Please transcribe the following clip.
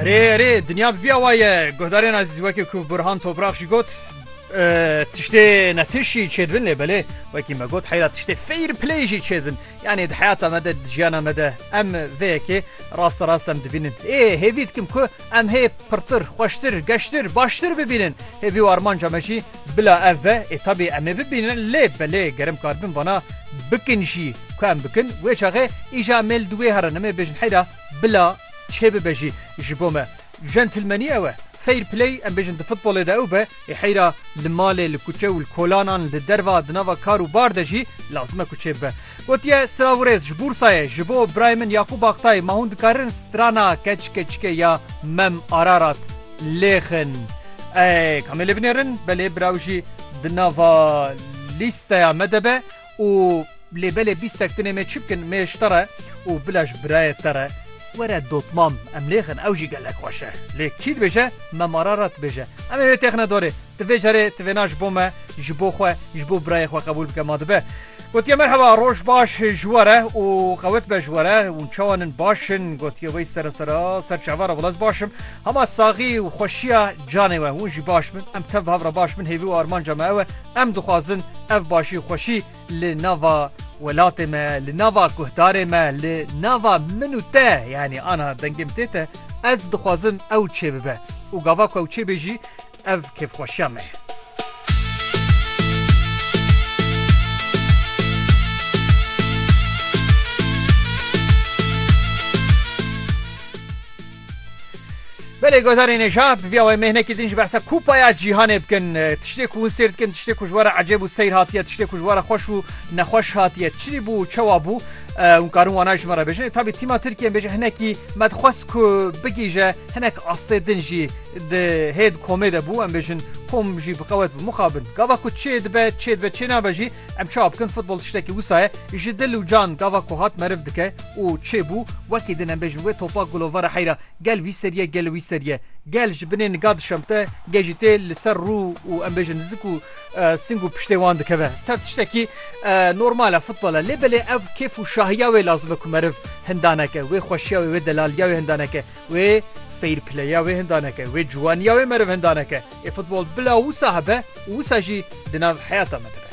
Erê erê dinya bi vî awa ye guhdarên ezîz wekî ku Burhan Toprak jî got tiştê netiş jî çêdibin lê belê wekî me got heyra tiştê fêr play jî çêdibin yanê di heyata me de di jiyana me de em vê yekê rasta rast em dibînin ê hêvî dikim ku em hê pirtir xweştir geştir baştir bibînin hêvî û armanca me jî Bila ev be ê tabî em ê bibînin lê belê ger em karibin vana bikin jî ku em bikin wê çaxê îja em ê li wê herin em ê bêjin heyra bila çê bibe jî ji bo me jentilmenî ew e fair play em bêjin di futbolê de ew be ê heyra li malê li kuçe û li kolanan li derva di nava kar û bar de jî lazim e ku çê bibe. Gotiye, Siravurêz ji Bûrsayê ji bo birayê min Yaqûb Aktay ma hûn dikarin strana Keçikeçike ya Mem Ararat lêxin. Ey kamê lê binêrin belê bira wî jî di nava lîsteya me de be û lê belê bîstek tunê mê çi bikin mê ji te re û bila ji birayê te re were dotmam em lêxin ew jî gelek xweş e. Lê kî dibêje Mem Ararat dibêje. Em ê wê têxine dorê. Ti vê carê ti vêna ji bo me, ji bo xwe, ji bo birayê xwe qebûl bike ma dibe. Gotiye merheba roj baş ji we re û qewet be ji we re û çawan in baş in gotiye wê sere sera ser çava re wela ez baş im hema saxî û xweşiya canê we hûn jî baş bin em tev hav re baş bin hêvî û armanca me ew e em dixwazin ev başî xweşî li nava welatê me li nava guhdarê me li nava min û te yanî ana dengê min tê te ez dixwazim ew çêbibe û gava ku ew çêbê jî Ev kêfxweşiya me ye. Belê godarên ê jî bi vîya wê mêhnekî din ji behsa Kupaya Cîhanê bikin. Tiştê ku hûn sêr dikin, tiştê ku ji we re ecêb û seyr hatiye, tiştê ku ji we re xweş û nexweş hatiye. Çi bû, çawa bû? Hûn karin wana ji me re bêjin. Tabî tîma Tirkiyeyên bêje hinekî me dixwest ku bigihîje hinek astê din jî. Di hêd komê de bû em bêjin kom jî bi qewet bi muxa bin. Gava ku çê dibe çê dibe çê nabe jî em çawa bikin futbol tiştekî wisa ye ji dil û can gava ku hat meriv dike û çê bû wekî din em bêjin wê topa gulo vara heyra gel wî seriye gel wî seriye gel ji binê niga dişemte gel jî tê li ser rû û em bêjin li zik û sing û piştê wan dikeve tev tiştekî normal e futbol e lê belê ev kêf û şahiya wê lazim e ku meriv hinda neke wê xweşiya wê wê delaliya wê hinda neke. Wê fair playeya wê hindaneke, wê ciwaniya wê meriv hindaneke. Ê futbol bila wisa hebe û wisa jî di nav heyata me de be.